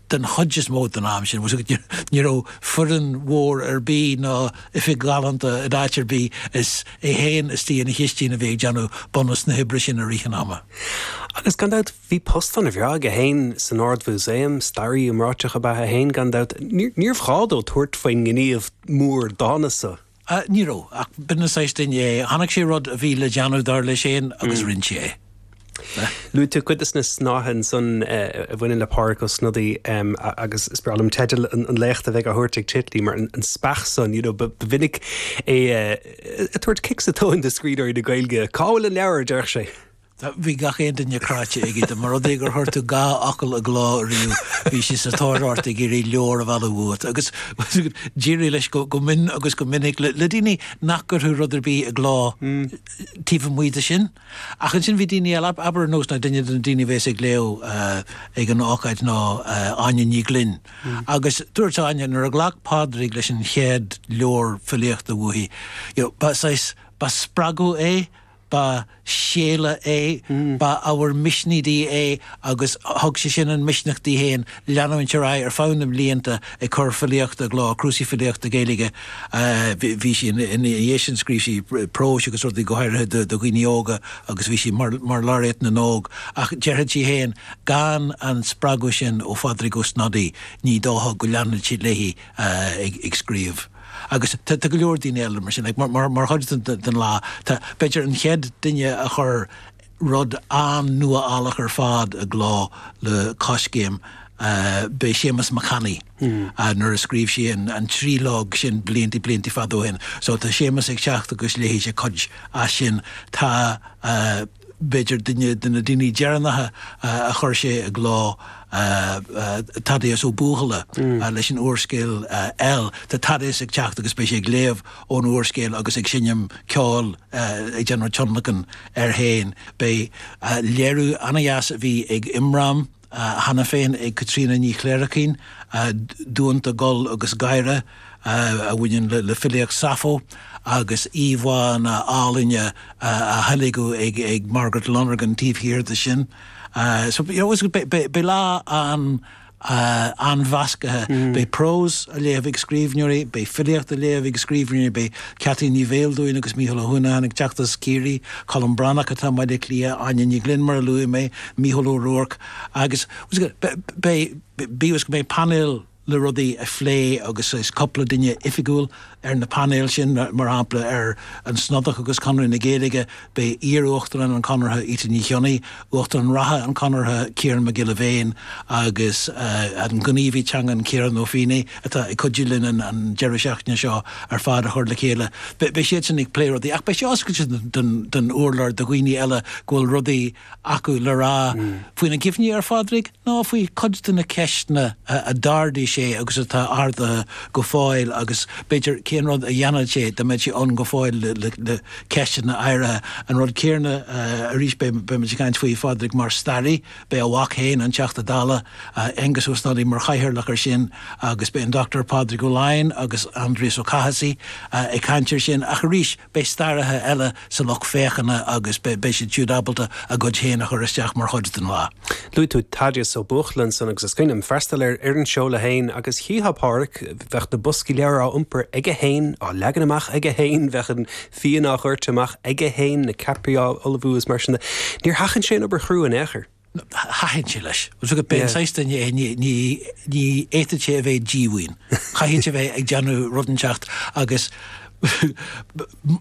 den chuid is mó den am sin, ní raibh foireann mhór ar bith ná oifig ghalánta in áit ar bith, is é féin istigh ina chistín a bhí ag déanamh bunús na hoibre sin i rith an ama. Agus gan dabht, bhí post an-bhreá aige féin san Ard-Mhúsaem, staraí iomráiteach ab ea é féin, gan dabht, níorbh ghá dó tabhairt faoin ngníomh mór dána san. Ní raibh, ach b'in an saghas duine é. Chonaic sé rud a bhí le déanamh, dar leis féin, agus rinne sé é. Luaigh tú cuid de na snáithe ansan a bhaineann le Pádraig Ó Snodaigh agus is breá liom teideal an léachta a bheidh á thabhairt ag Titley mar An Speach San, you know, ba mhinic é ag tabhairt cic sa tóin do scríbhneoirí na Gaeilge. Cá bhfuil an leabhar, a déarfadh sé. Tá, bhí gach aon duine cráite aige. Dá mba rud é gur chuir tú dhá fhocal i gcló riamh, bhí sé sa tóir ort ag iarraidh leabhar a mhealladh uait. Agus d'éirigh leis go mion agus go minic le daoine nach gcuirfeadh rud ar bith i gcló taobh amuigh de sin. Ach ansin bhí daoine eile, abair ar nós ná duine de na daoine a bheas ag léamh ag an ócáid ná Áine Ní Ghlinn. Agus dúirt Áine nuair a ghlac Pádraig leis an chéad leabhar filíochta uaithi, you know, ba saghas, ba spreagadh é, Ba séala é, ba ábhar misnigh di é agus thug sé sin an misneach di féin leanúint ar aghaidh ar feadh na mblianta ag cur filíochta i gcló, cnuasaigh filíochta Gaeilge. Bhí sí, ina dhiaidh sin scríobh sí próis agus rudaí go háirithe do dhaoine óga agus bhí sí mar Laureate na nÓg ach déarfadh sí féin gan an spreagadh sin ó Phádraig Ó Snodaigh ní dócha go leanfadh sí léi ag scríobh. Agus tá go leor daoine eile mar sin. Mar chuid den lá, tá b'fhéidir an chéad duine a chuir rud an-nuálach ar fad i gcló le Coiscéim, b'é Séamas Mac Annaidh, nuair a scríobh sé an trílóg sin blianta, blianta fada ó shin. So tá Séamas ag teacht agus léifidh sé cuid as sin. Tá. b'fhéidir duine de na daoine deireanacha a chuir sé i gcló, Thaddeus Ó Buachalla leis an úrscéal EL. Tá Thaddeus ag teacht agus beidh sé ag léamh ón úrscéal agus ag seinm ceoil, ag déanamh tionlacan air féin. Beidh léiriú an-deas a bhí ag Imram. cheana féin ag Caitríona Ní Chléirchín, Duanta, Gol agus Gáire, a bhaineann le filíocht Sappho, agus íomhánna ealaíne á theilgeadh ag Margaret Lonergan taobh thiar de sin. Beidh lá an-mheascaithe, beidh prós á léamh ag scríbhneoirí, beidh filíocht á léamh ag scríbhneoirí, beidh Ceaití Ní Bheildiúin agus Mícheál Ó hUanacháin ag teacht as Ciarraí, Colm Breathnach atá i mBaile Átha Cliath, Áine Ní Ghlinn mar a luaigh mé, Mícheál Ó Ruairc, Agus cé go mbeidh painéal le rudaí a phlé agus cúpla duine oifigiúil ar na painéil sin, mar shampla ar An Snodach agus Conradh na Gaeilge, beidh iar-Uachtarán an Chonartha Íte Ní Chionnaith, Uachtarán reatha an Chonartha Ciarán Mac Giolla Bhéin agus an gníomhaí teangan Ciarán Ó Feinneadha atá ag cuidiú linn an deireadh seachtaine seo ar fad a chur le chéile. Beidh siadsan ag plé rudaí ach beidh sé oscailte don urlár do dhaoine eile go bhfuil rudaí acu le rá faoina gcuimhní ar Phádraig nó faoi chuid de na ceisteanna a d'ardaigh sé agus atá ardaithe go fóill agus, b'fhéidir, cén rud a dhéanfadh sé dá mbeadh sé ann go fóill le ceisteanna áirithe. An rud céanna arís, beimid ag caint faoi Phádraig mar staraí, beidh a mhac féin, an Teachta Dála, Aengus Ó Snodaigh, mar chathaoirleach air sin agus beidh an Dr Pádraig Ó Laighin agus Aindrias Ó Cathasaigh ag caint air sin ach, arís, Beidh staraithe eile sa lucht féachana agus beidh siad siúd ábalta a gcuid féin a chur isteach mar chuid den lá. Luaigh tú Thaddeus Ó Buachalla ansan agus is cuimhin liom freastal ar an seoladh féin agus chífeá Pádraig, bheadh na boscaí leabhar á iompar aige féin, á leagan amach aige féin, bheadh an fíon á dhoirteadh amach aige féin, na ceapairí á ullmhú is mar sin de. Níor sheachain sé an obair chrua in aon chor. Thaitin sé leis. Agus b'fhéidir pé an saghas duine é, ní fhéadfadh sé a bheith díomhaoin. Chaithfeadh sé a bheith ag déanamh rud inteacht agus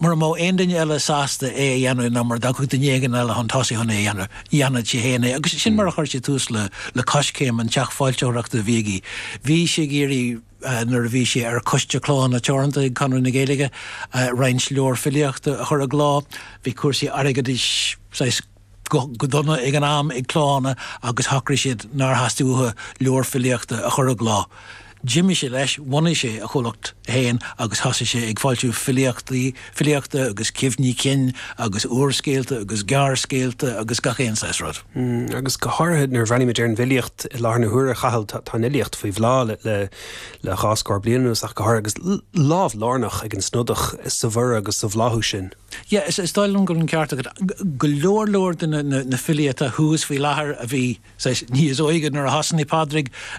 mura mbeadh aon duine eile sásta é a dhéanamh nó mura dtiocfadh duine éigin eile chun tosaigh chun é a dhéanamh, dhéanfadh sé féin é. Agus sin mar a chuir sé tús le Coiscéim, an teach foilsitheoireachta a bhí aige. Bhí sé ag iarraidh, nuair a bhí sé ar Choiste Clódhanna Teoranta ag Conradh na Gaeilge, roinnt leabhar filíochta a chur i gcló. Bhí cúrsaí airgeadais saghas. go dona ag an am ag Clódhanna agus shocraigh siad nár theastaigh uathu leabhar filíochta a chur i gcló. D'imigh sé leis, bhunaigh sé a chomhlacht féin agus thosaigh sé ag foilsiú filíochtaí, filíochta agus cuimhní cinn agus úrscéalta agus gearrscéalta agus gach aon saghas rud. Agus go háirithe nuair a bhreathnaímid ar an bhfilíocht i láthair na huaire, a Chathail, tá an fhilíocht faoi bhláth le dhá scór bliain anuas ach go háirithe agus lámh lárnach ag an Snodach sa bhorradh agus sa bhláthú sin. Yeah, is dóigh liom go bhfuil an ceart agat. Go leor leor de na filí atá thuas faoi láthair a bhí, saghas, níos óige nuair a thosnaigh Pádraig